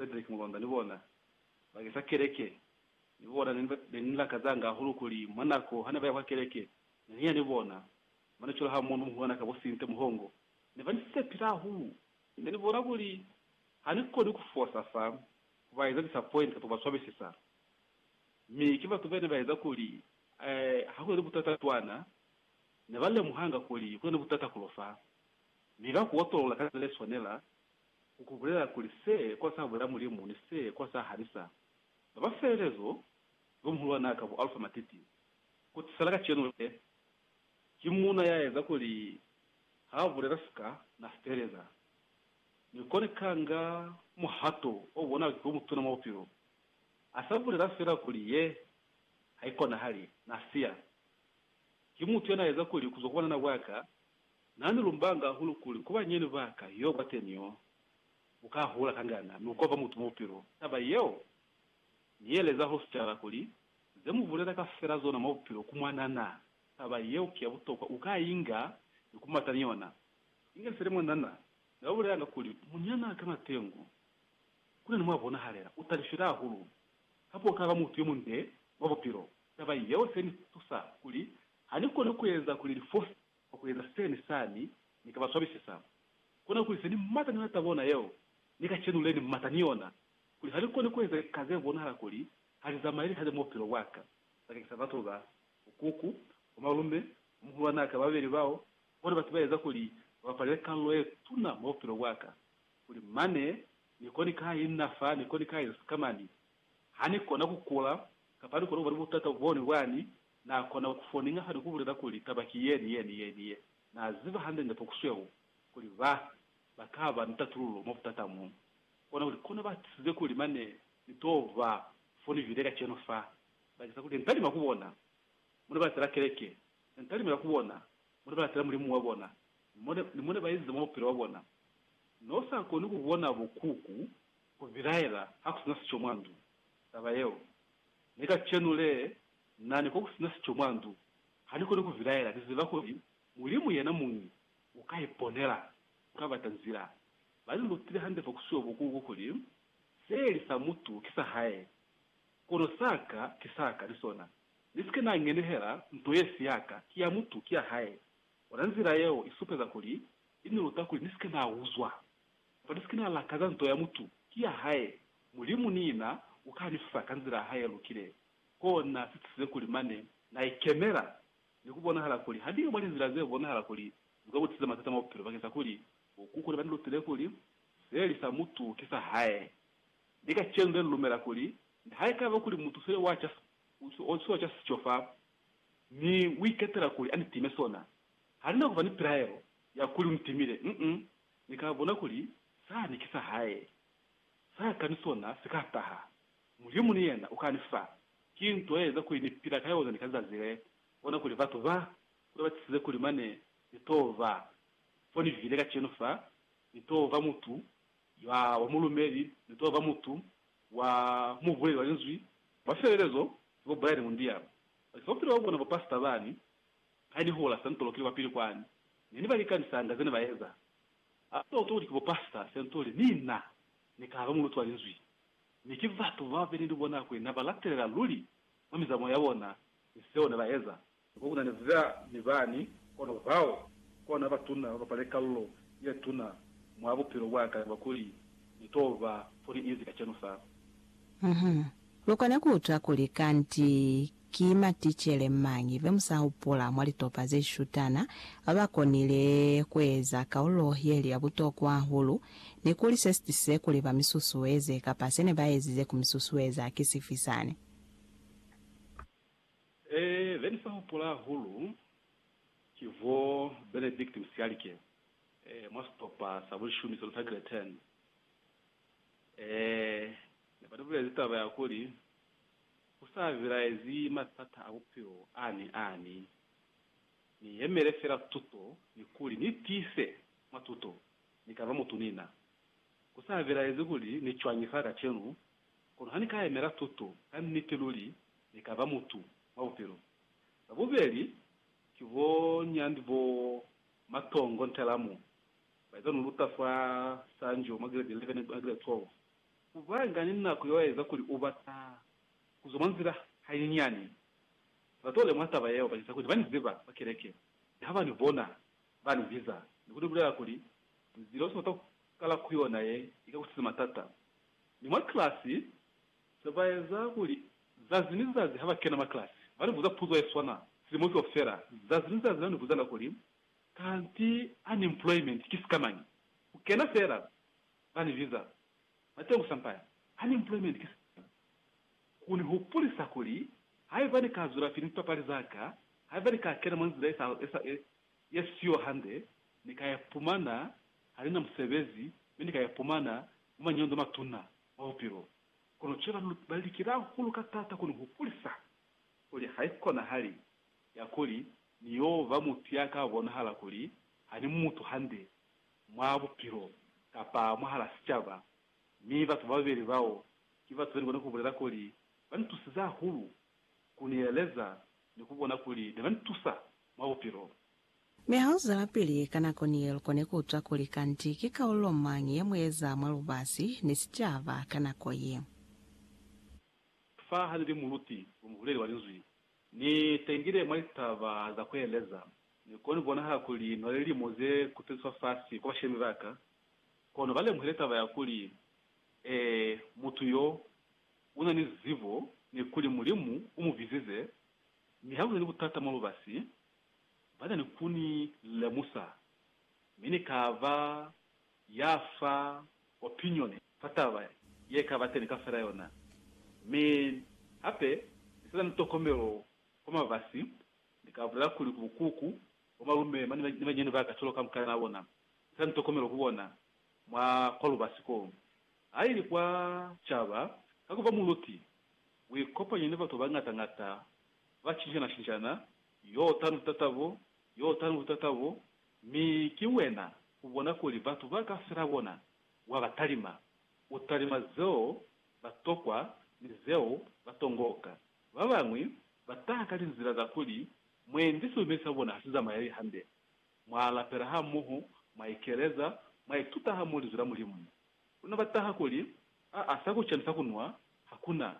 Cedric Mulonda ni bona, bakeng sa keleke. Ni bona ne ni, ne ni lakazanga hahulu kuli mwa nako hane baya kwa keleke, ne ni ya ni bona. Mane cwalo ha mundu muhulwana ka bo Sinte Muhongo, ne ba ni sepile hahulu. Ne ni bona kuli ha ni koni ku fosa fa ku ba eza disappoint kapa ku ba swabisisa. Mi ki batu bene ba eza kuli, eh, ha ku na ni butata cwana, ne ba lemuhanga kuli ku na ni butata kulo fa, mi ba ku otolola ka za ne swanela, ku kubulela kuli se kwa sa bulela Mulimu ni se kwa sa halisa ba ba felelezo Yo Muhulwanaa ka bu Alfa Matiti, ku tisela kacenu le, ki Muuna ya eza kuli ha bulela sika na feteleza. Mi koni kanga muhato o bonala ki wo mutuna mwa bupilo, a sa bulela fela kuli ye ha ikonahali, na siya. Ki mutu ya na eza kuli ku zwa ku banana bwa ka Na ni lumbanga hahulu kuli ku banyeni ba ka yo kwateni yo u ka hula kangana ni ku kopa mutu mwa bupilo. Taba yeo Ni yeleza hosipitala kuli, Ze mu bulela kafela zona mwa bupilo ku mwana na. Taba yeo ki ya butokwa, u ka inga ni ku mata ni yona. Inge fela mwana na, ni ba bulelanga kuli, Munyana ka matengu ku na ni mwa bonahalela u talifile hahulu, kamba u ka ba mutu yo munde mwa bupilo. Taba yeo se ni tusa kuli ha ni koni ku eza kuli li fose. Kwa ku eza sani sani, Ni ka ba swabisisa. Ku na kuli se Ni mata ni lata bona yeo, Ni ka cenule ni mata ni yona, kuli ha ni koni ku eza ka ze bonahala kuli ha li zamaeli hande mwa bupilo bwa ka, bakeng sa batu ba bukuku, bo malume, bo muhulwanaa ka babeli bao, bona batu ba eza kuli ba bapalele kalulo ye tuna mwa bupilo bwa ka, kuli mane Ni koni ka i na fa, Ni koni ka eza sikamani ha Ni kona ku kula, kapa Ni kona ku ba ni butata boni bwani, Na kona ku foninga hali ku bulela kuli taba ki yeni yeni yeni ye. Na ziba hande nde pokusweu kuli ba, ba ka ba ni tatululo mwa butata mo. Kona kuli kono ba tisize kuli mane ni to ba fonivile kacenu fa, bakeza kuli ne ni talima ku bona mo ne ba latela keleke, ne ni talimela ku bona mo ne ba latela Mulimu wa bona, ni mo ne, ni mo ne ba ezize mwa bupilo bwa bona. No sa koni ku bona bo kuku ku bilaela ha ku sina sico mwa ndu, taba yeo. Ne kacenu le, Na ni kokusina sico mwa ndu. Ha ni koni ku vilaela. Ni ziba kuli Mulimu yena muñi u ka iponela, u ka bata nzila. Ba ni lutile hande fa ku siwa bukuku kuli, Se li sa mutu ki sa hae, kono sa ka ki sa ka ni sona. Ni si ke na ngenehela nto ye si ya ka, ki ya mutu, ki ya hae. Ona nzila yeo i supeza kuli i ni luta kuli ni si ke na uzwa, kamba ni si ke na lakaza nto ya mutu, ki ya hae. Mulimu niina u ka ni fa ka nzila ya hae ye lukile. Ki kona si tusize kuli mane na ikemela ni ku bonahala kuli haniyo mwa linzila ze bonahala kuli lu ka mu tisiza matata mwa bupilo bakeng sa kuli bo kuku ne ba ni lutile kuli se li sa mutu ki sa hae. Mi kacenu ne ni lumela kuli nihaikaba kuli mutu se wa ca se wa ca sico fa mi u iketela kuli a ni time sona, ha ni na ku ba ni pilaelo ya kuli u ni timile. Uh-uh. Ni ka bona kuli sani ki sa hae. Sa ka ni sona si ka taha Mulimu ni yena uka ni fa. Ki nto yeza kuli ni pila ka yona ni ka zazi le. Bona kuli batu ba kule batisize kuli mane ni to ba fo ni vile kacenu fa, ni to ba mutu ya wa mulumeli, ni to ba mutu wa mubuleli wa Linzwi. Mwa felelezo, ki bo Brian Mundial, baki kaufela ba bona bo pastor bani, ha ni hula Sentolo kili kwapili kwani, ne ni ba likanisaña zene ba eza. Ha to utwa kuli ki bo pastor Sentolo ni na ni ka ba muluti wa Linzwi. Mi ki batu bababeli ni bona kuli naba latelela luli mwa mizamo ya bona ni seo ne ba eza. Mi ko kuna ni za ni bani, kono bao kona batuna ba bapale kalulo ye tuna mwa bupilo bwa ka kaba kuli ni to ba fo ni inzi kacenu fa. Uhum. Lu kona ku utwa kuli kanti Ki maticele mañi be mu sa hupula mwa litopa ze shutana ba ba konile ku eza kaulo ye li ya butokwa hahulu, ni kuli se si tisize kuli ba mi susueze kapa se ne ba ezize ku mi susueza ki sifi sani? Ee, be ni sa hupula hahulu ki bo Benedict Msialike mwa sitopa sa bulishumi se lu tagile Turn. Ee, ne ba ni bulezi taba ya kuli Ku sa bilaezi matata a bupilo a ni a ni, ni yemele fela tuto ni kuli ni tiise mwa tuto ni ka ba mutu ni na. Ku sa bilaezi kuli ni cwañi fa kacenu, kono ha ni ka yemela tuto, ka niti luli ni ka ba mutu mwa bupilo. Ba bubeli ki bo nyandi bo Matongo Ntelamu, ba iza lu luta fa Sanjo mwa Grade 11 na Grade 12. Ku banga ni nako yeo ya eza kuli u bata ku zwa mwa nzila hanyinyani. Ba to lemuha taba yeo bakeza kuli ba ni ziba kwa keleke mi ha ba ni bona, ba ni biza ni ku ni bulela kuli, Nzila u si bata ku kala ku yona ye i ka ku siza matata. Mi mwa kilasi, se ba eza kuli zazi ni zazi ha ba kena mwa kilasi, ba ni buza puzo ye swana silimo kaufela. Zazi ni zazi ba ni buzanga kuli, Kanti unemployment ki sikamañi? Ku kena fela ba ni biza bateñi ku sampaya, unemployment, ki sina ku ni hupulisa kuli haiba ni ka zwelapili lipapali za ka, haiba ni ka kena mwa nzila ye siyo hande, ni ka ipumana ha ni na musebezi mi ni ka ipumana mwa manyondo a matuna mwa bupilo. Kono cwale ba ba likile hahulu ka taata ku ni hupulisa kuli haikonahali ya kuli ni yo ba mutu ya ka bonahala kuli ha ni mutu hande, mwa bupilo kapa mwahal'a sicaba, mi batu bababeli bao ki batu ze ni kona ku bulela kuli ba ni tusize hahulu, ku ni eleza, ni ku bona kuli ne ba ni tusa mwa bupilo. Mi ha lu zwelapili ka nako ni ye, lu kone ku utwa kuli kanti ki kaulo mañi ye mu eza mwa lubasi ni sicaba ka nako ye. Fa ha ni li muluti, bo muhuleli wa Linzwi, Ni tengile mwa litaba za kueleza. Ni koni kubonahala kuli no lilimo ze kuteliswa fasi kwa bashemi ba ka, kono ba lemuhile taba ya kuli, Ee, mutu yo, una ni zibo, ni kuli Mulimu u mu bizize. Mi ha ku na ni butata mwa lubasi, ba na ni ku ni lemusa, mi ni ka ba ya fa opinione ka taba ye ka ba teni kafela yona, mi hape ni sina ni tokomelo kwa mabasi, ni ka bulela kuli ku bukuku, bo malume mane ni banyinyani ba ka cwalo ka mukalana wa bona, ni sina ni tokomelo ku bona mwa kwa lubasi ko. Ha ili kwa caba, ka ku ba muluti, u ikopanya ni batu ba bañata-ñata, ba cinjana-cinjana, yo tanu tatabo, yo tanu tatabo, Mi ki wena ubona kuli batu ba ka fela bona wa ba talima. U talima zeo ba tokwa ni zeo ba tongoka. Ba bañwi ba taha ka linzila za kuli, Mwendi silume sa bona ha si zamayeli hande. Mwa lapela hamoho, mwa ikeleza, mwa ituta hamoho Linzwi la Mulimu. Kuna ba taha kuli, Aa, sa kuca ni sa kunwa ha ku na.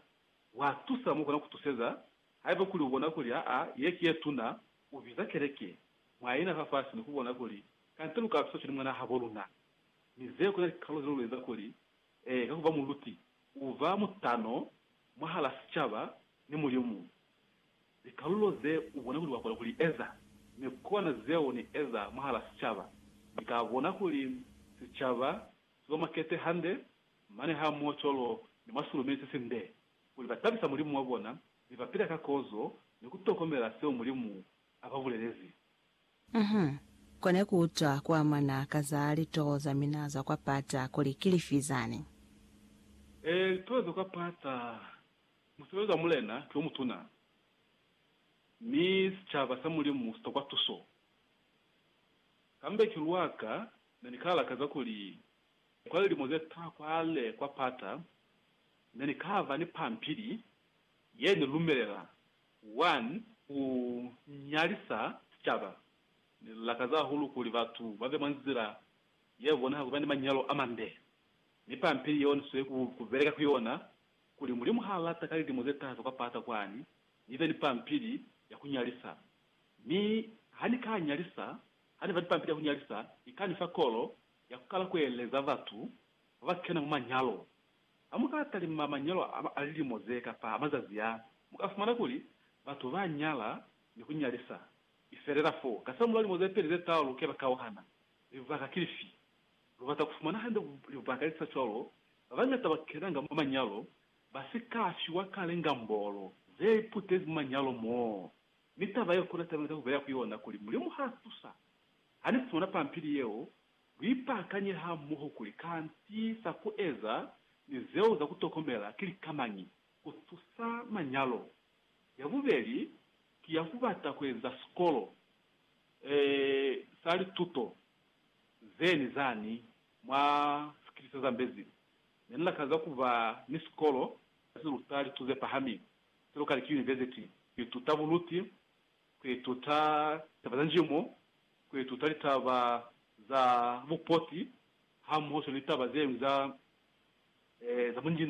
Wa tusa mo kona ku tuseza, haiba kuli u bona kuli aa, ye ki ye tuna, Ku biza keleke mwa yena fa fasi ni ku bona kuli kante lu ka tusa cwale mwana habo luna. Mi zeo kuna likalolo ze lu lu eza kuli, ee, ka ku ba muluti, u ba mutano mwahala sicaba ni Mulimu. Likalolo ze u bona kuli wa kona ku li eza, mi kona zeo ni eza mwahala sicaba. Ni ka bona kuli sicaba si ba makete hande, mane hamoho cwalo ni mwa silume se sinde. kuli ba tabisa Mulimu wa bona mi ba pila ka kozo ni ku tokomela seo Mulimu a ba bulelezi. Uhum. Kone ku utwa ku amana ka za litoho za mina za kwa pata kuli ki lifi zani? Ee, litoho za kwa pata. Musebezi wa Mulena ki o mutuna, mi sicaba sa Mulimu si tokwa tuso. Kambe ki lwa ka na ni ka lakaza kuli Kwa lilimo ze ta kwale kwa pata, ne ni kaba ni pampili ye ni lumelela wani ku nyalisa sicaba. Ni lakaza hahulu kuli batu ba be mwa nzila ye bonahala ku ba ni manyalo a mande. Mi pampili yeo ni sweli ku beleka ku yona kuli Mulimu ha lata ka lilimo ze taza kwa pata kwani ni be ni pampili ya ku nyalisa. Mi ha ni ka nyalisa, ha ni ba ni pampili ya ku nyalisa, i ka ni fa kolo ya kukala kueleza batu baba kena mwa manyalo. Hamuka talima manyalo a lilimo ze kapa a mazazi a, muka fumana kuli batu ba nyala ni ku nyalisa, mi felela fo kasamul'a limo ze peli ze tau lu keba kauhana. Libaka ki lifi? Lu bata ku fumana hande libaka li sa cwalo, babañata ba kenanga mwa manyalo ba si ka fiwa kale ngambolo ze iputezi mwa manyalo moo. Mi taba ye ku na talimeta ku beleha ku yona kuli Mulimu ha tusa. Hanifumana pampili yeo, luipakanye hamoho kuli kanti za kueza ni zeo za kutokomela ki likamañi kutusa manyalo. Yabubeli ki ya kubata kueza sikolo e sa lituto ze ni zani mwa sikili se zambezi. Ne ni lakaza kuba ni sikolo se luta lituto ze pahamile, se lukali ki yunivesiti, ku ituta buluti kuituta taba za njimo, kuituta litaba za bupoti hamoho swana ni taba zeñwi za bunjinani.